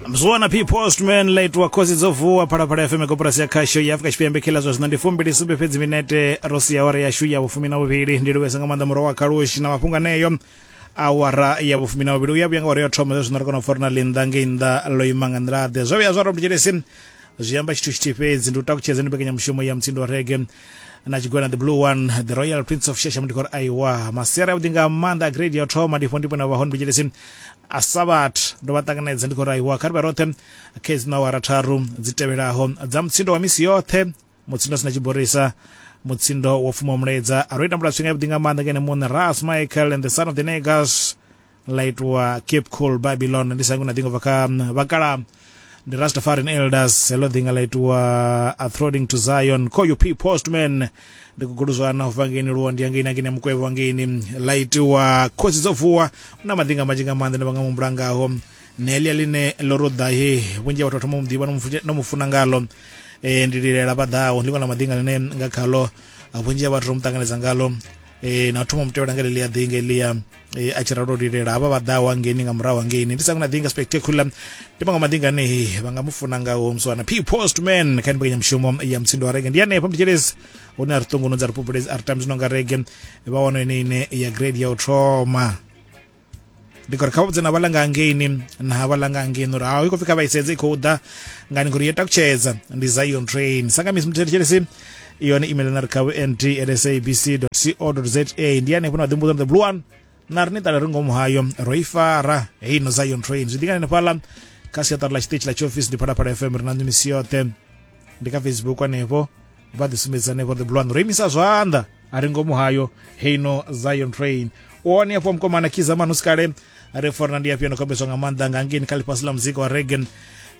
mzwana p postman late wa khosi dzo vuwa phalaphala fm koporasi ya khasho ya afurika tshipembe kila zwa zwino ndi fumbili sumbe fhedzi minete ro sia awara yashu ya vhufumi na vhuvhili ndi livhesa nga maanḓa muro wa khalushi na mafhungo aneyo awara ya vhufumi na vhuvhili u ya vhuya nga awara ya thoma zwa zwino ri kona u fora na linda ngei nnḓa lo ima nga nḓila ḓe zwo vhuya zwa robert jelesi zwi amba tshithu tshithihi fhedzi ndi u takutshedza ndi mbekanyamushumo ya mutsindo wa rege na tshigwena the blue one the royal prince of shasha mudikoro aiwa masiari avhuḓi nga maanḓa a grade ya u thoma ndi fho ndipo na vhahone vhitshelesi a sabat ndo vha ṱanganedza ndi khou ri aiwa kha ri vha roṱhe kha hedzi awara tharu dzi tevhelaho dza mutsindo wa misi yoṱhe mutsindo sina tshiborisa mutsindo wo fuma muledza a ro itambula tshifhinga yavhuḓi nga maanḓa ngene muṋe ras michael and the son of the negas ḽa itiwa cape cool babylon ndi sangu na ḓingo bva kha mm, vhakala ndi rastafarian elders heḽo ḓinga ḽa itiwa athroding to zion call you p postman ndi kuguluzwana u bva ngeini luwo ndi yangeini angeini ya mukwevho wa ngeini ḽa itiwa khosi dzo vuwa na madinga manzhi nga maanḓa ndi vha nga mumbula ngaho nelia line ḽo ruḓa he vhunzhi ha vhathu vha thoma u muḓivha no mufu- no mu funa ngalo e, ndi lilela vha ḓaho ndi ḽiṅwe ḽa madinga ḽine nga khalo ah, vhunzhi ha vhathu ro mu ṱanganedza ngalo e, na thoma mutevhela nga lelia ḓinga elia e, a tshi ralo lilela havha vha ḓaho hangeni nga murahu hangeni ndi sangu na ḓinga spectacular ndi maṅwe maḓinga ane vha nga mu funa ngaho muswana p post man kha ni mbekanyamushumo ya mutsindo wa rege ndi hanefha mutshitshelezi hune a ri ṱunguno dza ri pupulezi a ri tambi zwino nga rege vha wana ine ine ya grade ya u thoma ndi khou ri kha vhudze na vhalanga hangeini na vhalanga hangeini uri haho i khou pfi kha vha isedze i khou ḓa ngani ngori yo takutshedza ndi zion train sangamisi muthethe tshelesi yone email na ri kha vnd at sabc co za ndi hanefho na ḓimbudzo the blue one na ri ni ṱala ri ngomu hayo ro i fara hei no zion train zwi ḓingani nefhala kha siaṱari ḽa tshiṱitshi ḽa tshiofisi ndi phalaphala fm ri na nḓu misi yoṱhe ndi kha facebook hanefho vha ḓi sumbedza hanefho the blue ro imisa zwanḓa a ri ngomu hayo heino zion train one afho mkomana khiza manusi kale ri fona ndi afhio ndokombeswa nga maanḓa nga ngeni kha ḽifhasi ḽa muzika wa regen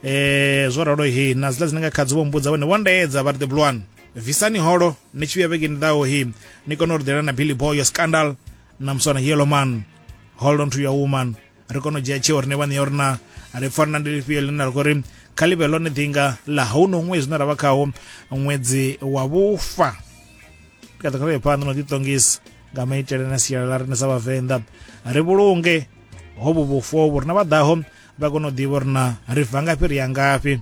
eh zwo ralo hi na zila dzine nga khadzi vho mbudza vhone vho ndaedza vha ri the blue visani holo ni tshi vhuya vhegeni ḓaho hi ni kone u ri ḓela na billy boy yo scandal na muswana yellow man hold on to your woman ri kone u dzhia tsheo rine vhaṋe ya uri na ri farana ndi lifhio ḽine ra khou ri kha ḽi vhe ḽone ḓinga ḽa hauno ṅwedzi zwine ra vha khawo ṅwedzi wa vhufa ndi kha ḓi khavhe phanḓa na u ḓiṱongisa nga maitele na sialala rine sa vhavenḓa ri vhulunge hovhu vhufu vhu rina vha ḓaho vha kone u ḓivha uri na ri bva ngafhi ri ya ngafhi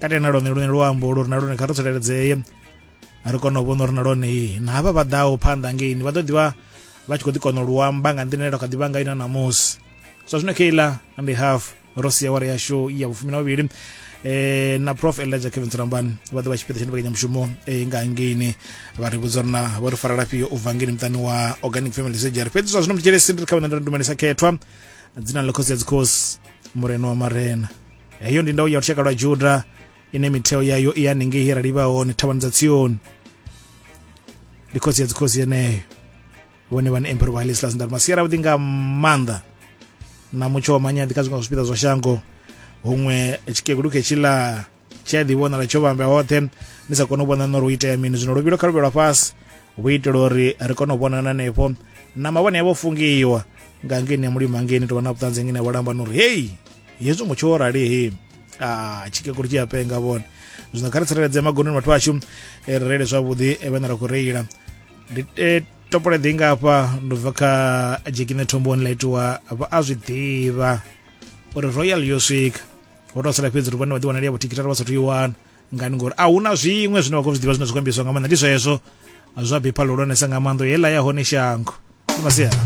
kati na lone lune luambo ulu ri na lone kha ri tsireledzee ri kone u vhona uri na lone na havha vha ḓaho phanḓa ngeini vha ḓo ḓivha vha tshi khou ḓi kona u luamba nga nḓila ine kha ḓivha nga ina ṋamusi so zwino keiḽa ndi half ro sia wara yashu ya vhufumi na vhuvhili eh na prof elijah kevin tsirambani vha ḓo vha tshipiḓa tsha mbekanyamushumo eh, nga ngeini vha ri vhudza uri na vho ri fara lafhio u bva ngeini muṱani wa organic family surgery fhedzi zwa zwino mutshele sindri kha vhana nda ndumelisa khethwa dzina ḽa khosi ya dzikhosi murena wa marena heyo ndi ndau ya lushaka lwa juda ine mitheo yayo i haningei ye ra livha hone thavhani dza tsioni ndi khosi ya dzikhosi yeneyo vhone vhane emperor wa helislas ndaruma sia ravhuḓi nga maanḓa na mutsho wa manyaḓi kha zwiṅwe zwa zwipiḓa zwa shango huṅwe tshikegulu khetshila tshi a ḓivhonala tsho vhamba hoṱhe ni sa kone u vhona nori u itea mini zwino luvhilo kha luvhelwa fhasi vhu itela uri ri kone u vhonana hanefho na mavhone yavho fungiwa nga ngeni ya mulimo hangeni tovha na vhuṱanzi ngeni ya vhalamba nori heyi hezwi mutsho wo rali he ah, tshikekulu tshi a penga vhone zwino kha ri tsireledzee magononi vhathu vhashu eh, ri reile zwavhuḓi eh, vhane ra khou reila ndi eh, topole ḓi nga hafha ndo bva kha jekine thomboni ḽa itiwa vha a zwi ḓivha uri royal yo swika ho tou sala fhedzi ri vhone vha ḓi wanali ya vhothikitari vha sathu i wana ngani ngori a huna zwiṅwe zwine vha khou zwi ḓivha zwine zwi khou ambiswa nga maanḓa ndi zwezwo zwa bipha ḽihulwanesa nga maanḓo heiḽa ya hone shango ndi masiara